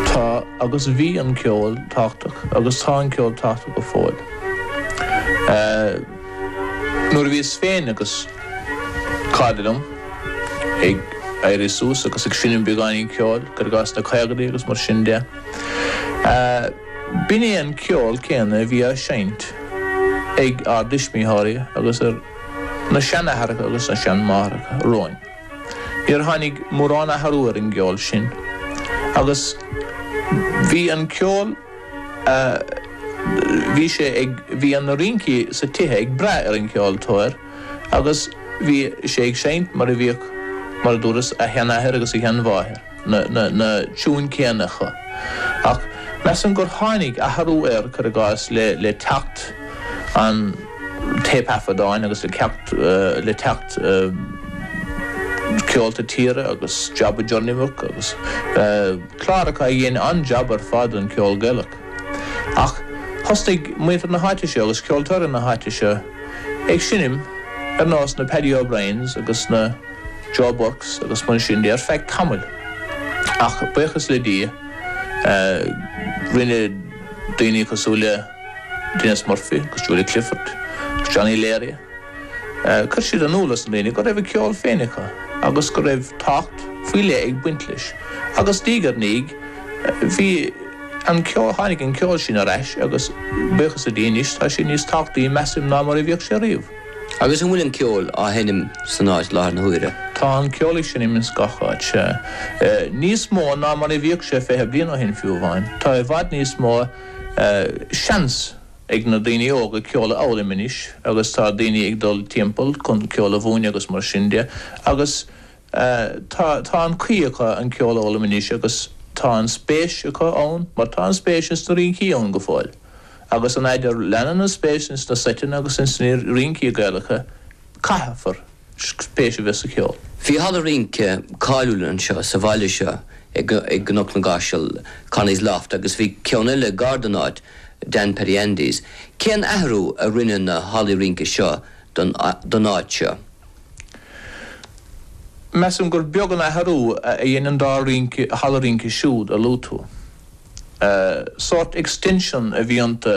Tá agus bhí an ceol tábhachtach agus tá an ceol tábhachtach go fóill. Nuair a bhíos féin agus cairde liom ag éirí suas agus ag seinm beagáinín ceoil, cuir i gcás sna caogaidí agus mar sin de, b'in é an ceol céanna a bhí á seinnt ag ár dtuismitheoirí agus ar na seanathracha agus na seanmháithreacha romhainn. Níor tháinig mórán athrú ar an gceol sin agus bhí an ceol a bhí sé ag, bhí na rincí sa tithe ag brath ar an gceoltóir agus bhí sé ag seinnt mar a bhíodh, mar a dúras, a sheanathair agus a sheanmháthair. na tiúin céanna acu. Ach measaim gur tháinig athrú air, cuir i gcás, le teacht an téipthaifeadáin agus le teacht, le teacht Ceolta Tíre agus Job of Journeywork agus cláracha a dhein an-jab ar fad don cheol Gaelach. Ach thosnaigh muintir na háite seo agus ceoltóirí na háite seo, Ag seinm ar nós na Paddy O'Briens agus na Joe Burkes agus mar sin de ar feadh tamaill. Ach buíochas le Dia, rinne daoine cosúil le Denis Murphy agus Julia Clifford agus Johnny Leary, cuir siad in iúl dos na daoine go raibh a ceol féin acu agus go raibh tábhacht faoi leith ag baint leis. Agus diaidh ar ndiaidh, bhí. an ceo-, tháinig an ceol sin ar ais agus, buíochas le Dia, anois tá sé níos tábhachtaí, measaim, ná mar a bhíodh sé riamh. Agus an bhfuil an ceol á sheinm san áit i láthair na huaire? Tá an ceol ag seinm ins gach aon áit. Níos mó ná mar a bhíodh sé fiche bliain ó shin, fiú amháin. Tá i bhfad níos mó seans ag na daoine óga ceol a fhoghlaim anois agus tá daoine ag dul timpeall chun ceol a mhúineadh agus mar sin de agus, Tá, tá an caoi acu an ceol a fhoghlaim anois agus tá an spéis acu ann mar tá an spéis ins na rincí ann go fóill. Agus an fhaid a leanann an spéis ins na seiteanna agus ins na rincí Gaelacha caithfear spéis a bheith sa cheol. Bhí halla rince cáiliúil anseo sa bhaile seo i gCnoc na gCaiseal, Connie's Loft, agus bhí ceann eile gar don áit, Dan Paddy Andy's. Cén athrú a rinne na hallaí rince seo don áit seo? Measaim gur beag an athrú a dhein an dá rince halla rince siúd a luaigh tú. Sórt extension a bhí iontu.